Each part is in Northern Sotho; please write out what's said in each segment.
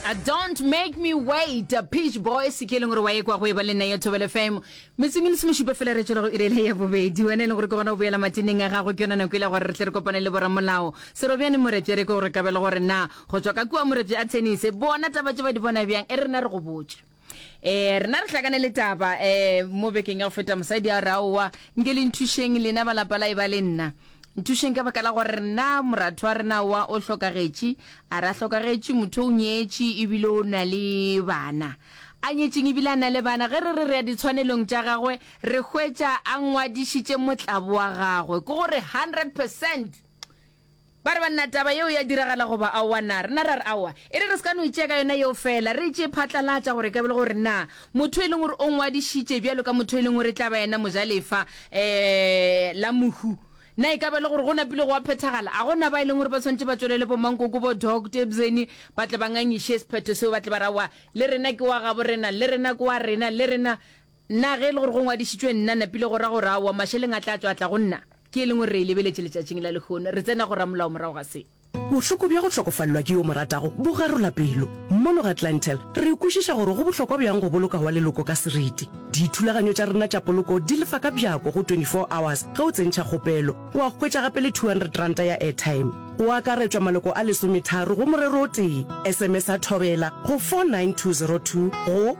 Uh, don't make me wait uh, pitch boy se ke e leng gore wa ekwa go e ba le nna ya thobele fm metseng e le semošupa fela re tswela go irele ya bobedi wena e leng gore ke gona go boela mateneng a gago ke yona nako e le gore re tle re kopane le boramolao serobjane morepje re ke gore kabele gore na go tswa ka kua morepje a tennis bona taba tse ba di bona bjang e re na re go botse Eh, rena re hlakane le taba eh, mo bekeng ya go feta mosadi a raowa nke le nthušeng lena balapa la e ba le nna nthušeng ka baka la gore rena moratho wa rena wa o hlokagetše a re a hlokagetše motho o nyetše ebile o na le bana a nyetšeng ebile a na le bana ge re re re ya ditshwanelong tša gagwe re hwetša a ngwadišitše motlabo wa gagwe ke gore 100 percent Ba re, Banna, taba yeo ya diragala goba aowa na? Rena ra re, Aowa. E re re se ka no e tšea ka yona yeo feela. Re e tšee phatlalatša gore e ka ba e le gore na motho yo e leng gore o ngwadišitše bjalo ka motho yo e leng gore e tla ba yena mojalefa la mohu, na e ka ba e le gore go napile gwa phethagala. A go na ba e leng gore ba swanetše ba tšwelele bo-Mankoko, bo-Doc Tebzeni ba tle ba ngangiše sephetho seo, ba tle ba re, Aowa, le rena ke wa gabo rena, le rena ke wa rena, le rena? Na ge e le gore go ngwadišitšwe nna, napile go ra gore aowa, mašeleng a tla tšwa a tla go nna? Ke e leng gore re e lebeletše letšatšing la lehono. Re tsena go ramolao morago ga se. Bohloko bja go hlokofalelwa ke yo o mo ratago bo garola pelo. Mono ga Clientele, re kwešiša gore go bohlokwa bjang go boloka wa leloko ka seriti. Dithulaganyo tša rena tša poloko di lefa ka bjako go 24 hours ge o tsentšha kgopelo. O a hwetša gape le 200 ranta ya airtime. Go akaretšwa maloko a lesometharo go morero o tee. SMS-a Thobela go 49202 go.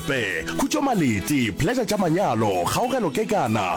Pe, Khutšo Malete, Pleasure tša Manyalo, Kgaogelo Kekana,